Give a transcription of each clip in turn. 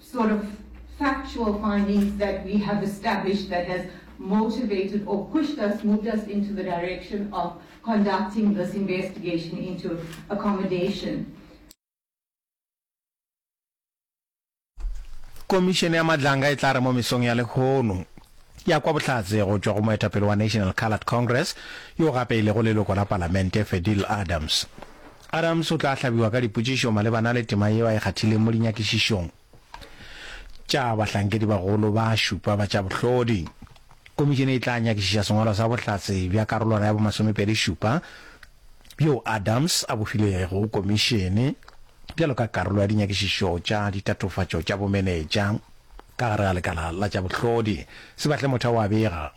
sort of factual findings that we have established that has motivated or pushed us, moved us into the direction of conducting this investigation into accommodation. Komišene ya Madlanga e tla re mo mesong ya lehono ya kwa bohlatse go tšwa go moetapele wa National Coloured Congress yo gape e lego leloko la palamente Fedil Adams. Adams o tla hlabiwa ka dipotšišo malebana le tema yeo a e kgathileng mo dinyakišišong tša bahlankedibagolo ba šupa ba tša bohlodi. Komišene e tla nyakišiša sengwalwa sa bohlatse bja karolwana ya bomasomepedi šupa bjoo Adams a bo filego komišene bjalo ka karolo ya dinyakišišo tša ditatofatšo tša bomenetša ka gare ga lekala la tša bohlodi. Sebahle motha o a bega.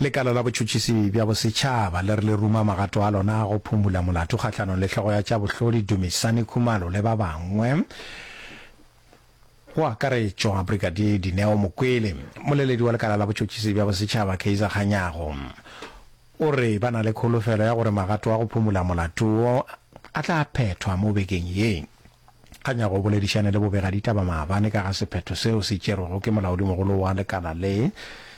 Lekala la Botšhotšhisi bja Bosetšhaba le re le ruma magato a lona a go phumula molato kgahlanong le hlogo ya tša bohlodi Dumisani Khumalo le ba bangwe go akaretšwa Brigadier Dineo Mokwele, moleledi wa lekala la Botšhotšhisi bja Bosetšhaba Kaizer Kganyago. O re ba na le kholofelo ya gore magato a go phomola molato wo a tla phethwa mo bekeng ye. A nyaka o boledišane le bobegaditaba maabane ka ga sephetho seo se tšerwego ke molaodimogolo wa lekala le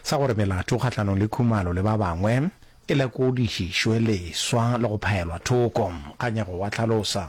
sa gore melato kgahlanong le Khumalo le ba bangwe e lekodišišwe leswa le go phaelwa thoko. Kganyago o a hlalosa.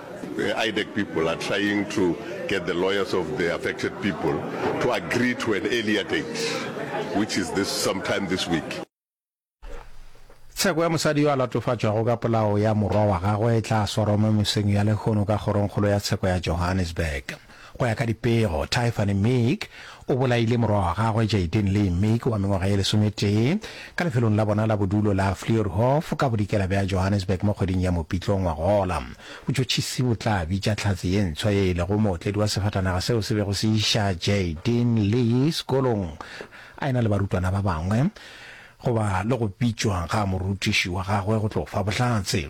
IDEC people are trying to get the lawyers of the affected people to agree to an earlier date, which is this sometime this week. Tsheko ya mosadi yo a latofatšwago ka polao ya morwa wa gagwe e tla swarwa mo mesong ya lehono ka kgorongkgolo ya tsheko ya Johannesburg. Go ya ka dipego, Tyfani Meek o bolaile morwa wa gagwe Jaydin Lee Meek wa mengwaga ye lesometee ka lefelong la bona la bodulo la Fleurhof ka bodikela bja Johannesburg mo kgweding ya Mopitlo ngwagola. Botšotšhisi bo tla bitša Tlhatse ye ntswa ye e lego mootledi wa sefatanaga seo se bego se iša Jaydin Lee sekolong a e-na le barutwana ba bangwe goba le go bitšwa ga morutiši wa gagwe go tlo fa bohlatse.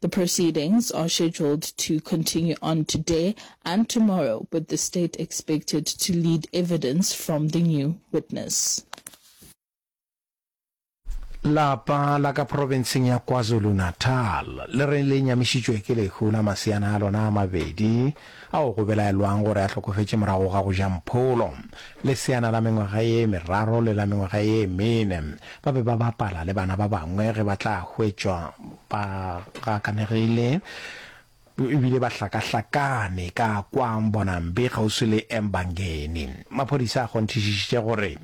The proceedings are scheduled to continue on today and tomorrow with the state expected to lead evidence from the new witness. Lapa la ka profenseng ya KwaZulu-Natal le re le nyamišitšwe ke lehu la maseana a lona a mabedi ao go belaelwang gore a hlokofetše morago ga go ja mpholo. Leseana la mengwaga ye meraro le la mengwaga ye mene ba be ba bapala le bana ba bangwe ge ba tla hwetšwa ba gakanegile e bile ba hlakahlakane ka kwa Mbonambi kgauswi le Embangeni. Maphodisa a kgonthišišitše gore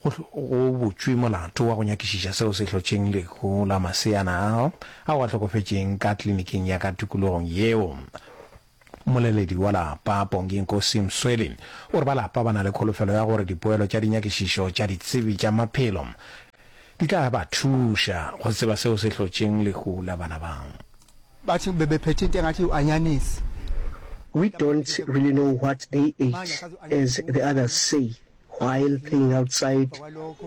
Go butšwe molato wa go nyakišiša seo se hlotšeng lehu la maseana ao ao a hlokofetšeng ka kliniking ya ka tikologong yeo. Mmoleledi wa lapa, Pongi Nkosi Msweli, o re ba lapa ba na le kholofelo ya gore dipoelo tša dinyakišišo tša ditsebi tša maphelo di tla ba thuša go tseba seo se hlotšeng lehu la bana bao. We don't really know what they ate as the others say While playing outside,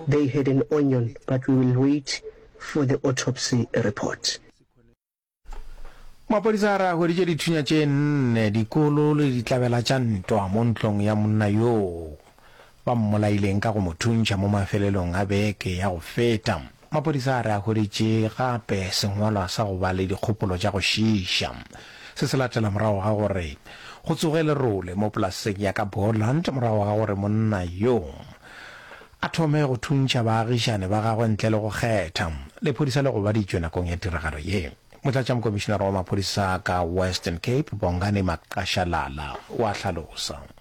they had an onion but we will wait for the autopsy report. Maphodisa a re a hweditše dithunya tše nne, dikolo le ditlabela tša ntwa mo ntlong ya monna yoo ba mmolaileng ka go mo thuntšha mo mafelelong a beke ya go feta. Maphodisa a re a hweditše gape sengwalwa sa go ba le dikgopolo tša go šiiša. Se se latela morago ga gore go tsoge lerole mo polaseng ya ka Boland morago ga gore monna yo a thome go thuntšha baagišani ba gagwe ntle le go kgetha. Lephodisa le gobaditšwe nakong ya tiragalo ye. Motlatšamokomišinara wa maphodisa ka Western Cape, Bongani Maqashalala, o a hlalosa.